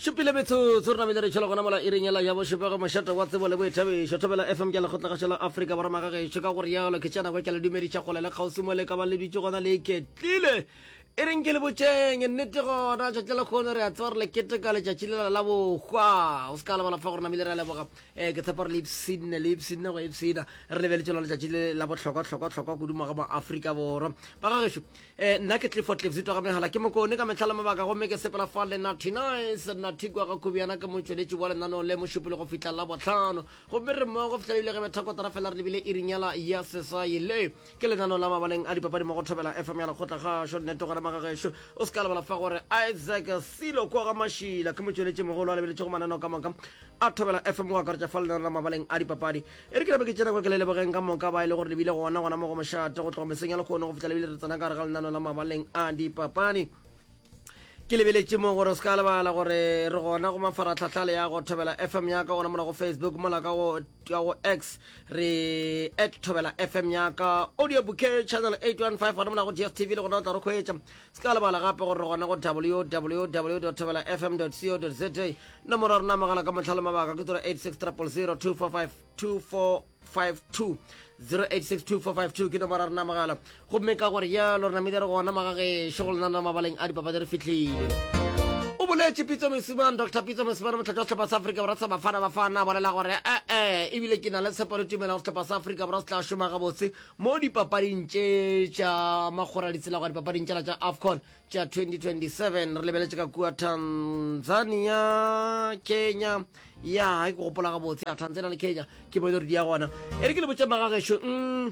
šupile metsotso re namile re tšhela gona mola iring ela ya bošupego mošate wa tsebo le boithabišo thobela fm ke lekgotlagašo la afrika borwa magagešo ka go rialo ke tšena kwa ke le dumediša kgole le kgauswi mo le ka ba le dutše gona le iketlile e reng ke le botšeng nnete gona tšatši la kgono re a tseba re le keteka letšatši lela la bohwa o se ka lebala fa gore namile re a leboga um ke tshepa re le ipsine le ipsine go ipsina re lebeletse lona letšatši le la bohlokwa tlhokwa tlhokwa kudu maga mo afrika borwa bagagešo Eh, nna ke tlifo tlifzitwa ga megala ke mokone ka metlhala mabaka gomme ke sepela fa le nathy nice nathy kwa ga khubiana ke motšweletši wa lenaneo le mošupile go fihla la botlhano gomme re mmogo go fihla ebile re betha kotara fela re lebile e rinyala ya sesaye le ke lenaneo la mabaleng a dipapadi mo go thobela fm ya lekgotla gašo nnete gore magagešo o se ka lebala fa gore isaac silo kwa ga mašila ke motšweletši mogolo a lebeletšego mananeo ka moka a thobela fm go akaretša fa lenaneo la mabaleng a dipapadi E re ke nape ke tsena kwa ke le lebogeng ka moka ba e le gore le bile gona gona mo go mošate go tloga meseng ya lekgono go fihla le bile re tsena ka gare ga lenano la mabaleng a dipapadi ke lebeletše mo gore o se ka lebala gore re gona go mafaratlhatlha le ya go thobela fm ya ka gona mola go facebook mola ka go x re at thobela fm ya ka audio bouquet channel 815 gona mola go gstv le gona o tla re kgwetša se ka lebala gape gore re gona go www thobela fm co za nomoro ya rena mogala ka motlha le mabaka ke tsoro 86002452452 0862452452 ke nomoro ya rena mogala gomme ka gore yalo re namile re gona magagešo go lenana mabaleng a dipapadi re fitlhile o boletše pitso mesumane dr pitso mesumane motlhatša wa sehlopha sa afrika borwa sa bafana bafana a bolela gore ee eh, eh, ebile ke na le tshepo le tumelo go sehlopha sa afrika borwa se tla šoma gabotse mo dipapading tše tša makgoraditsela go ya dipapading tšela tša afcon tša 2027 re lebeletše ka kua tanzania kenya ya ke gopola gabotse ya tanzania le kenya ke bone redi ya gona e re ke le botse magagešo mm,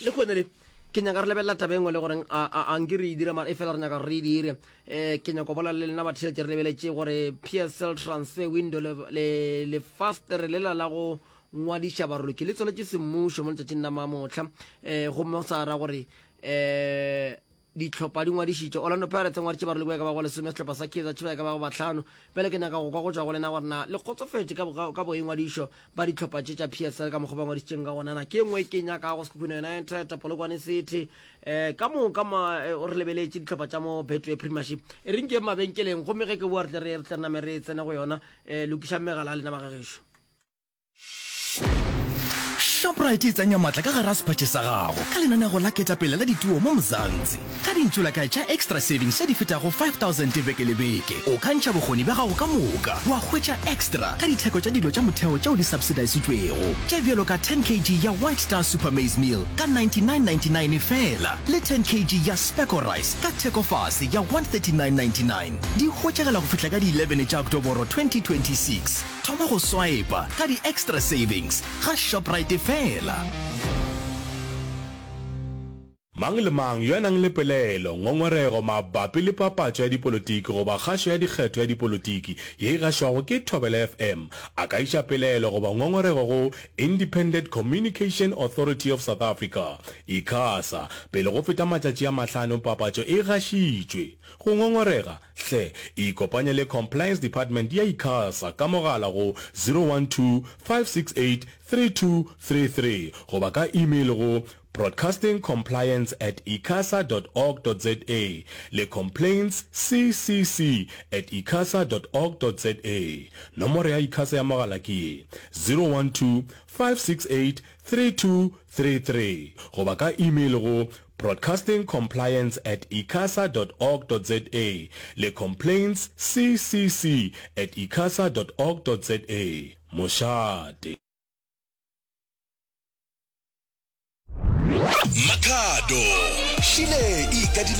le kgone le ke nyaka re lebelela taba engwe le goreng a nke re e dire mara e fela re nyaka re e dire um ke nyako bola le lena batheletše re lebeletše gore psl transfer window le fast re lela la go ngwadiša baroloki le tsweletše semmušo mo letšatšing la mamotlha um eh, gomme go sa ra gore um ditlhopha di ngwadišitše orlando pirates ngwadiše baroloki ba ka ba go lesome setlhopha sa kaizer chiefs ba ka ba go batlhano pele ke nyaka go kwa go tšwa go lena gore na le kgotsofetše ka boingwadišo ba ditlhopha tše tša psl ka mokgwa ba ngwadišitšeng ka gonana ke ngwe e ke nyaka go sekhukhune united polokwane city um ka moka eh, o re lebeletše ditlhopha tša mo betway premiership e reng ke mabenkeleng gomme ge ke boa re tle re tle name re tsene go yona um lokišang megala a lena ba gagešo Shoprite e tsenya matla ka gara sephatše sa gago ka lenanego la ketapele la dituo mo Mzansi. Ka dintsulakae tša Extra Savings tše di fetago 5000 beke le beke, o ka ntšha bokgoni bja gago ka moka wa hwetša extra ka ditheko tša dilo tša motheo tšeo di subsidisitšwego, tše bjalo ka 10 kg ya White Star Super Maize Meal ka 99.99 feela le 10 kg ya Specco Rice ka thekofase ya 139.99. Di hwetšagala go fihla ka di 11 tša Oktoboro 2026. Thoma go swipa ka di-extra savings ga Shoprite fela. Mang le mang yo a nang le pelaelo, ngongorego mabapi le papatšo ya dipolotiki goba kgašo ya dikgetho ya dipolotiki ye e gašwago ke Thobela FM a ka iša pelaelo goba ngongorego go Independent Communication Authority of South Africa, Icasa, pele go feta matšatši a mahlano papatšo e gašitšwe. Go ngongorega Hle, ikopanye le Compliance Department ya Icasa ka mogala go 012-568-3233 goba ka email go broadcastingcompliance at icasa dot org dot za le complaintsccc at icasa dot org dot za. Nomoro ya Icasa ya mogala ke ye, 012-568-3233 goba ka email go Broadcasting Compliance at icasa dot org dot za le Complaints CCC at icasa dot org dot za. Mošate. Makhado, šile e ikadile ka.